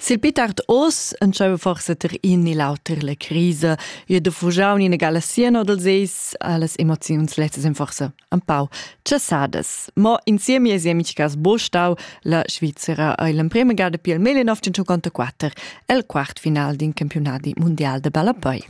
Sil pitart oz entscheiva forsa ter in ni l'auter la crisa, jeu da fugiau ni gala siano dals eis, las emoziuns lezzas ein forsa empau tschessadas. Mo insieme e siemic cas bo stau la Svizzera ei l'emprema gada pil 1954 el quart final d'in campionadi mundial de ballapei.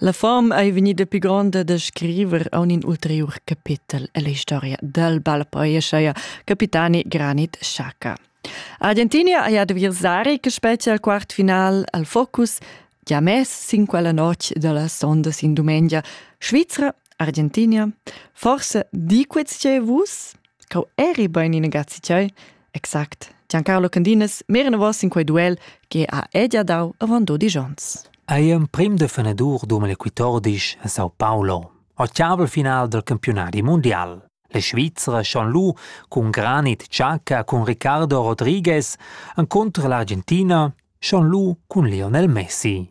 La fom ei vegnida pi gronda da scriver aunc in ulteriur capetel ella historia dal bal poescha capitani Granit Xhaka. A Argentina ei adversari che spetga al quartfinal al focus gia mess sin quella notg dallas sondas in dumengia Svizra, Argentina, forse di quets che vus? Cau eri bein in gazzi tgei? Exact. Giancarlo Candinas merenavos in quei duel che ha edia dau avant dodi gions. Ei emprim de fenadur dumel quittordisch a Sao Paulo, octavel final del campionati mondial. La Svizzera schon lu cun Granit Xhaka cun Ricardo Rodriguez encontra l'Argentina schon lu cun Lionel Messi.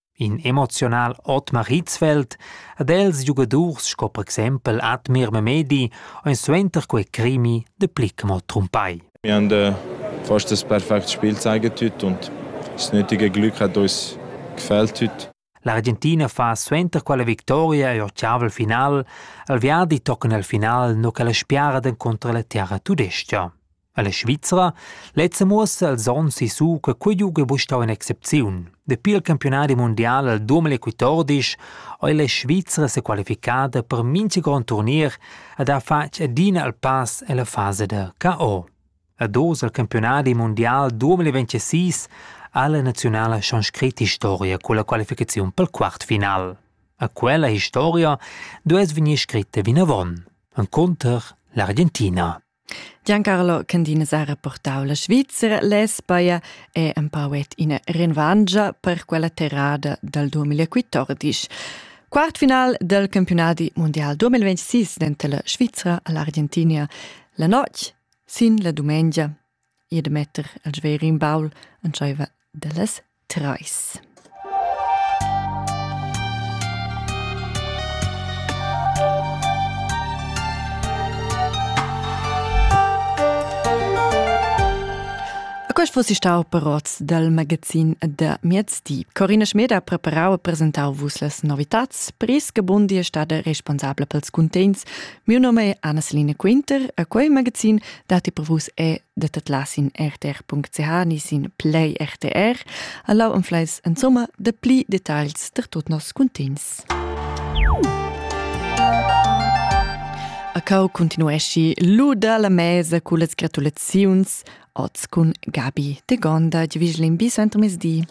In emoziunal Otmar Hitzfeld ed els giugadurs sco per exempel Admir Memedi ein suenter quei crimi de Plickmo trumpai. Wir haben äh, fast das perfekte Spiel zeigen heute und das nötige Glück hat uns gefällt heute. L'Argentina fa suenter quella victoria e ottaval final, al viadi tocan al final no che la spiara contro la terra tudestia. Alla Svizra lezza muossa als ons sissu che quei giug ei buca stau in'excepziun. Dapi il campionadi mundial al 2014 ei la Svizra sequalificada per mintga grond turnier ed ha fatg adina il pass ella fasa da KO. Ad oz al campionadi mundial 2026 ha la nazionala schon scrit historia con la qualificaziun pel quartfinal. A quella historia duess vegnir scritta vinavon. Enconter l'Argentina. Giancarlo Candina ha rapportau la Svizra, l'Espaia e empau et ina renvangia per quella terrada dal 2014. Quartfinal del campionadi mondial 2026 denter la Svizra e l'Argentina la notg sin la dumengia ir da metter il sveir in baul entscheiva dallas treis. Quest fosse stau parots dal magazin da miezdi. Corina Schmed ha preparau e presentau vus las novitats, pris che Bundi è stada responsabla pels cuntegns Miu nome è Anna-Selina Quinter e quei magazin datti per vus è de tatlas in rtr.ch ni sin Play RTR, allau anfleis insomma de pli details der tot nos cuntins. A cau continuesci luda la mesa cu les gratulaziuns oz cun Gabi de Gonda, di vigil in bis entramesdi.